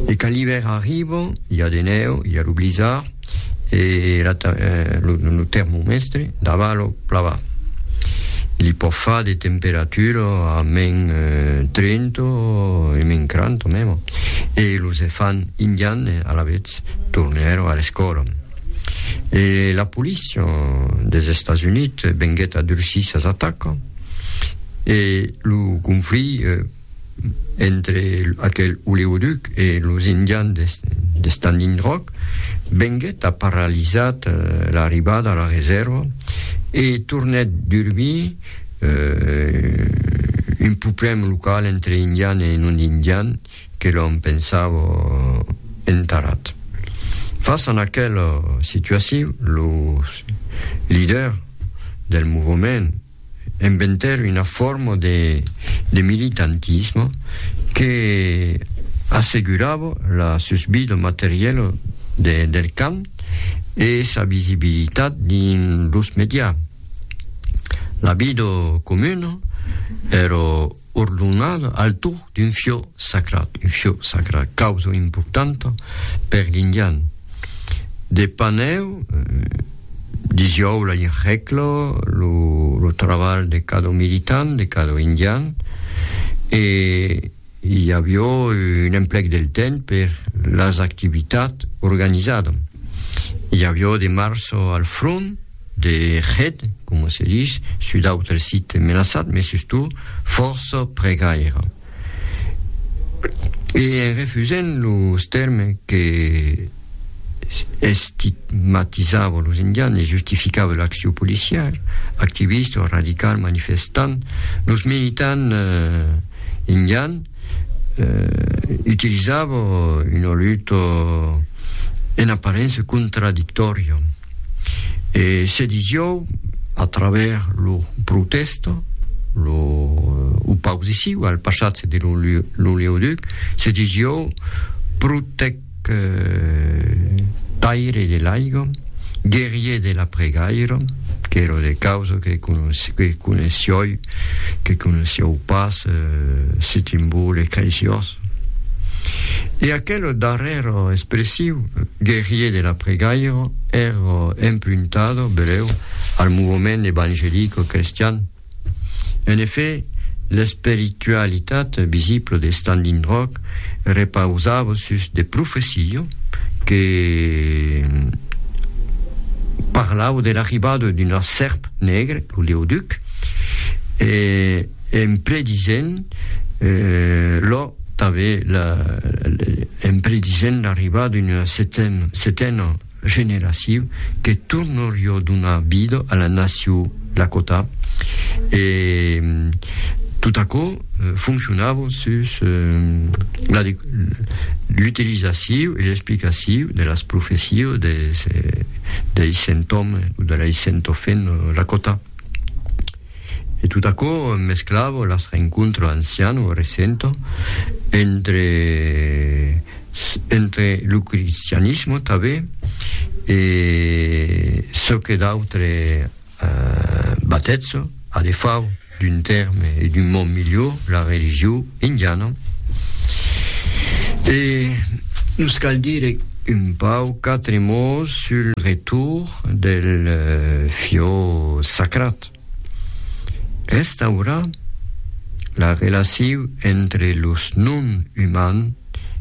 E quand l'ivèrn arriba, i a de nèu, i a lo blizzard, e la ta, eh, lo, lo termomèstre dava lo plava. Li pòt far de temperatura a men 30 e men 40 mèma. E los efants indians, alavetz, tornèron a l'escòla. E la polícia des Estats Units venguèt a durcir sas atacas, e lo conflit, eh, entre aquel oleoduc e los indians de, de Standing Rock, venguèt a paralizat eh, l'arribada a la reserva e tornèt d'urbir eh, un problèm local entre indian e non indian que l'on pensava entarat. Fas a aquela situacion, los liders del movement Inventèr una forma de militantisme que assegurava la susvida materiela del cant e sa visibilitat dins los medias. La vida comuna èra ordonal al to d'un fiò sacrat, un fiò sacrat, causa importanta per l'indian. De panèu, disiòu la hècla, lo, lo trabalh de cada militant, de cada indian, e i avió un emplec del temps per las activitats organizadas. I avió de março al front, de hèt, coma se dich, sus d'autres sites menaçats, mai sustot fòrça pregaire. E en refusent los tèrmes que estigmatizava los indians e justificava l'accion policièr, activista o radical manifestant, los militants indians utilizava una luta en aparença contradictòria. E se dijòu, a travèrs lo protèsta, lo opausiciu al passatge de l'oleoduc, se dijòu protec taire de l'aiga, guerrier de la pregaira, qu'èra de causa que coneissiòu pas Sitimbo le Caisiós. E aquelo darrèro expressiu guerrier de la pregairo ero empruntada, beleu, al movement evangelico-crestian. En effet, l'espiritualitat visibla de Standing Rock repausava sus de profecia que parlava de l'arribada d'una sèrp negre, lo Leo Duc, e En predisent lo tanben la en predisent l'arribada d'una setena generacion que tornorió donar vida a la nacion Lakota e tot aquò foncionava sus l'utilizacion e l'explicacion de las profecias deis cent òmes o de lei cent òfes Lakota. E tot aquò mesclava las rencontres ancian o recent entre entre lo cristianisme tanben e çò que d'autre batètz a defau d'un tèrme e d'un mot milhor la religion Indiana. E nos cal dire un pauc quatre mots sul retour del fiò sacrat. Restaurar la relaciu entre los non uman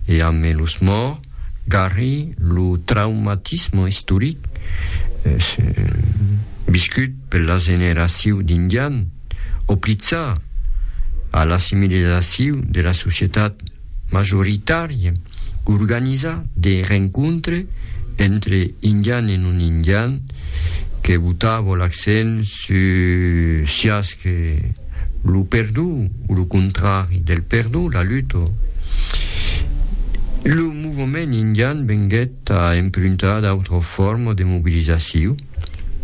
e ame los mòrt garri lo traumatisme istoric viscut per la generaciu d'indian. oplizar a l'assimilizaciu de la societat majoritària, organizar de rencontre entre indian e non indian que botava l'accent sus siás que lo perdó o lo contrari del perdó, la luta. Lo movement indian venguèt a empruntar d'autras formas de mobilizaciu.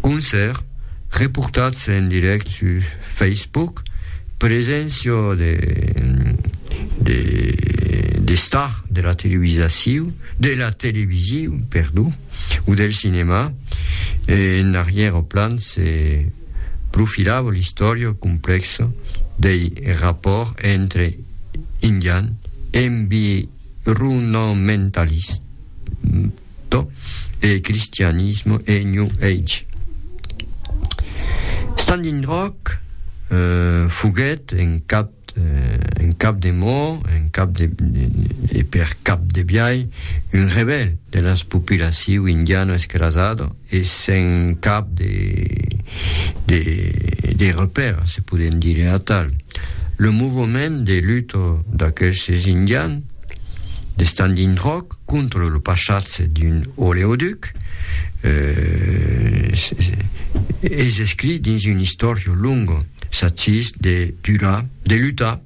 Concèrt reportats en dirèct sus Facebook, preséncia de star de la televisasiu, de la televisiu, perdó, o del cinemà, en arrièra plan se profilava l'istòria complèxa dei rapòrts entre indians environamentalis, Crypto e cristianismo e New Age. Standing Rock foguèt en cap en cap de mò, en cap de, e per cap de biai, un rebèl de las populaciu indiano escrasado, e sen cap de repère, se podem dire atal. Lo movement de luta d'aquestes indians de Standing Rock contra lo passatge d'un oleoduc es escrit dins una istòria longa, s'agís de lutar,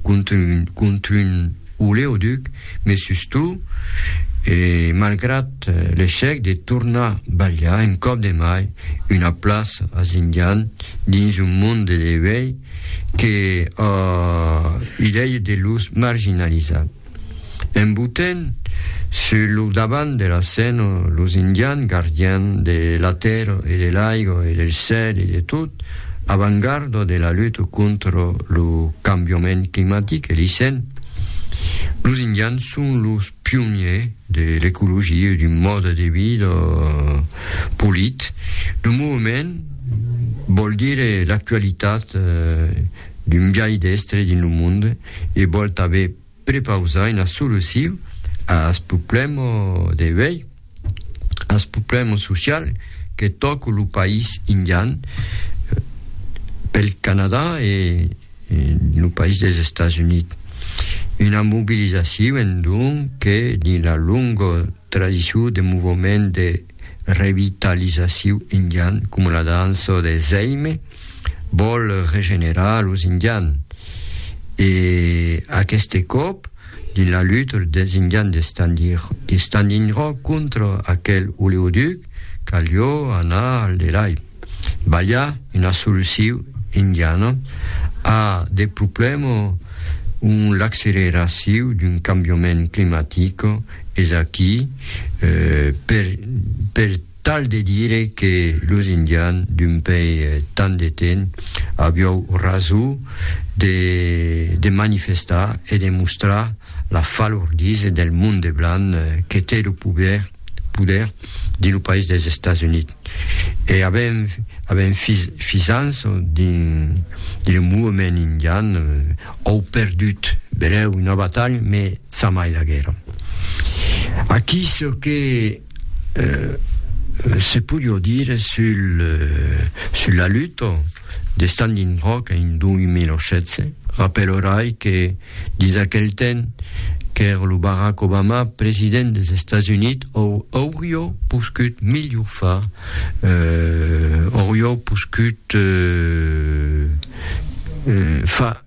cont un oleoduc, me sustou, e malgrat l'echec de tornar balhar un còp de mai una plaça as Indian dins un monde de uèi que a idèia de los marginalizar. En Bhutan, sus lo davant de la scèna, los Indians, gardians de la tèrra e de l'aiga e del cèl e de tot, avangàrda de la luta contra lo cambiament climatic, elisen, los Indians son los pioniers de l'ecologia e d'un mòde de vida polit. Lo movement vòl dire l'actualitat d'un biais d'èstre dins lo monde E vòl tanben prepausar una solucion ath problèma de uèi, ath problèma social que tòca lo país indian pel Canadà e lo país des Estats Units. Una mobilizacion, donc, que, dins la longa tradicion de movement de revitalizacion indian, coma la dança de Zeime, Vòl regenerar los Indian e aqueste còp dins la luta dels Indian de Standing Rock contra aquel oleoduc calió anar al delai, balhar una solucion indiana a de problèmas ont l'acceleracion d'un cambiament climatic es aquí per Tal de dire que los Indian d'un pei tant de temps aviou raso de de manifestar e de mostrar la falordisa del monde blanc que te lo poder poder dins lo país dels Estats Units e avèm avèm fis fisans dins dins lo movement Indian òu perdut belèu una batalha me ça mai la guerra aquí çò que Se podió dire sul la luta de Standing Rock en 2016, rapèlorai que dins aquel temps qu'ère lo Barack Obama president des Estats Units aurió poscut milhor far, aurió poscut far,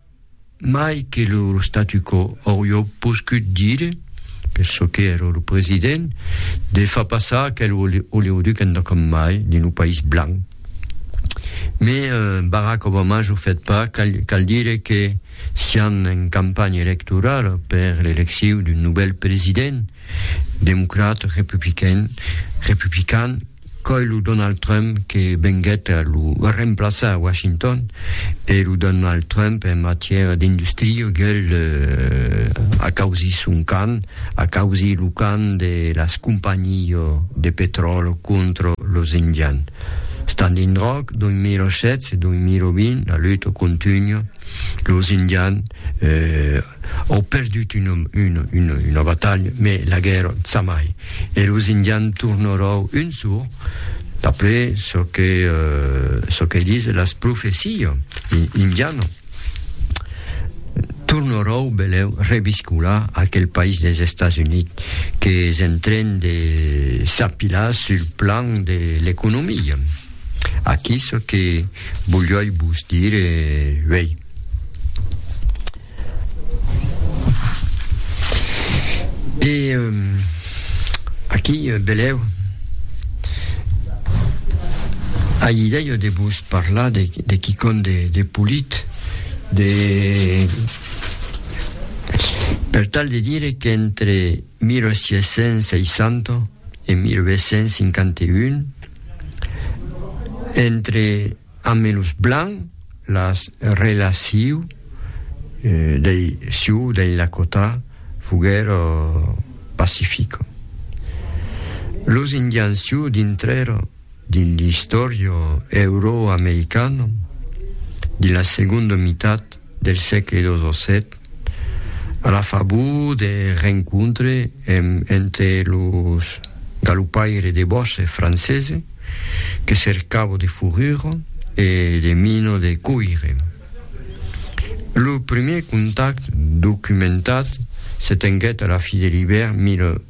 Mai que lo statu quo aurió poscut dire, per çò que èra lo president, de far passar aquel oleoduc endà com mai dins lo país blanc. Me Barack Obama jo fèt pas, cal dire que sián en campanha electorala per l'elecciu d'un novèl president, democrat republican, Qu'ei lo Donald Trump que venguèt a lo remplaçar a Washington, e lo Donald Trump en matièra d'industria gèl acausir son can, acausir lo can de las companhias de petròl contra los indians. Standing Rock, 2007-2020, la luta contunha. Los Indian au perdut una batalha, mai la guèrra zamai, e los Indian tornarau un sor, d'après çò que çò que dise las profecia indiana, tornarau beleu reviscolar aquel país des Estats Units qu'es en tren de s'apilar sul plan de l'economia. Aquí çò que volíoi vos dire uei. E aquí, velèu, ai idèia de vos parlar de, de quicòm de, de polit, de... Per tal de dire qu'entre 1860 e 1851, entre amb los blancs las relaciu dei siou dei Lakota foguèro pacifico. Los indians siou dintrèro dins l'istòrio euro-americano de la segondo mitat del sègle xvii, a la favor de rencontre entre los galopaires de bòsses franceses que cercavan de forrura e de mina de coire. Lo primièr contacte documentat se tenguèt a la fi de l'ivèrn 1800.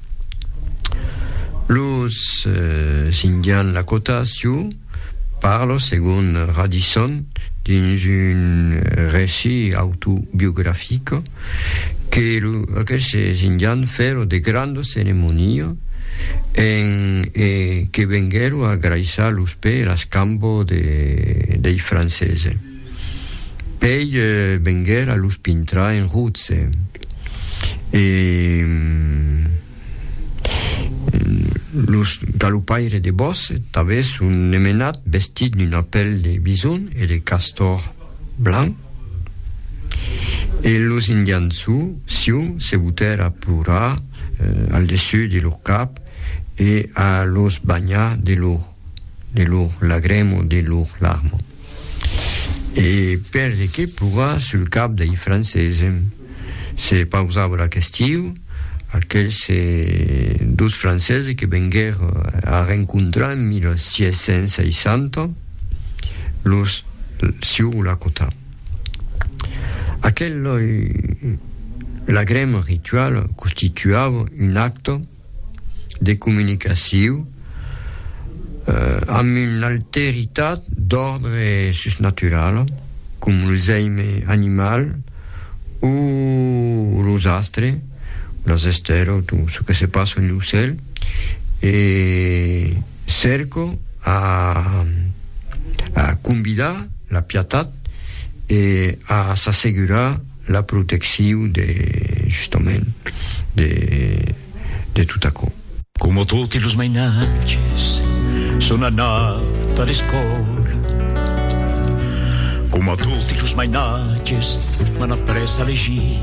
Los Indians Lakota Sioux parlon, segon Radisson, dins un recit autobiografic, que aqueles Indians fèron de granda ceremonia en e que venguèron agraissar los pès e las cambas dei Franceses. Pei venguer a los pintrar en rotse. E los galopaires de Bòsse tanben son nemenats vestits d'una pèl de bison e de castòr blanc. E los indians Sioux se botèr a plorar al dessús de lor cap e a los banhar de lor de lor lagremo, de lor larmo. E per de qué plorar sul cap dei Francese? Se pausava la questiu, aquels dos Francese que venguèr a rencontrar en 1660 los sieu Lakota. Aquel lagremo ritual constituava un acte de comunicaciu amb una alteritat d'òrdre susnatural, com los èime animal o los astres, las estèlas o çò que se passa en lo cèl, e cèrco a convidar la pietat e a s'assegurar La protecciu de, justament, de, de tot aquò. Coma toti los mainatges, son anat a l'escòla. Coma toti los mainatges, m'an après a legir.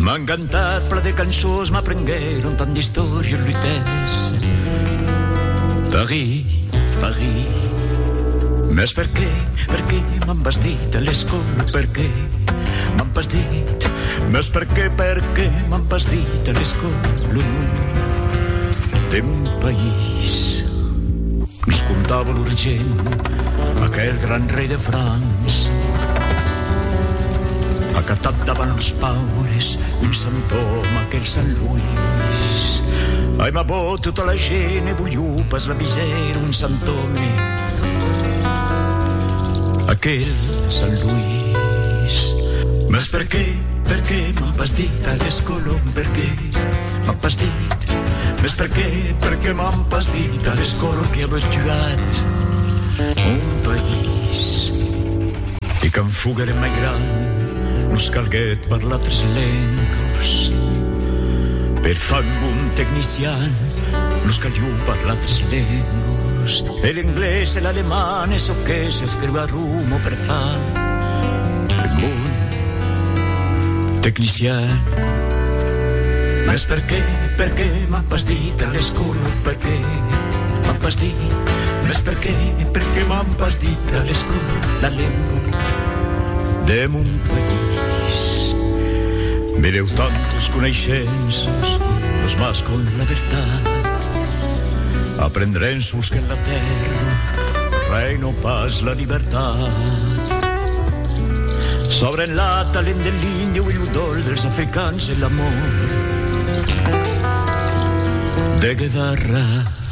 M'an cantat plan de cançons, m'aprenguèron tant d'istòrias lutèses. Paris, Paris. Mès perqué, perqué m'an bastí? Te l'escolo perqué m'an pas dit Meus perqué, perqué m'an pas dit Te l'escolo de mon país Nos contava lo regent Aquel gran rei de França Acatat davant los paures Un sant òme aquel sant Luís Ai ma bo tota la gent e bolhou pas la misèra Un sant òme Aquel Sant Luís Mas per qué, per qué m'as pas dit Aguest colom per qué m'as pas dit Mas per qué, per qué m'as pas dit Aguest colom qui a betuat Mon país E quand foguèrem mai grands, nos calguèt parlar tres lengas. Per far un bon tecnician, nos calió parlar tres lengas. E l'englés e l'aleman e çò que s'escriu a Roma per far un bon tecnician. Mès per qué, per qué m'an pas dit a l'escòla, per qué m'an pas dit? Mès per qué, per qué m'an pas dit? Cadescun la lengua de mon país Me deu tantes coneishences Los mas con la vertat Aprendrem sols que la terra Reino pas la libertat Sabrem la talent de l'Indio e lo dol dels africans e l'amor de Guevara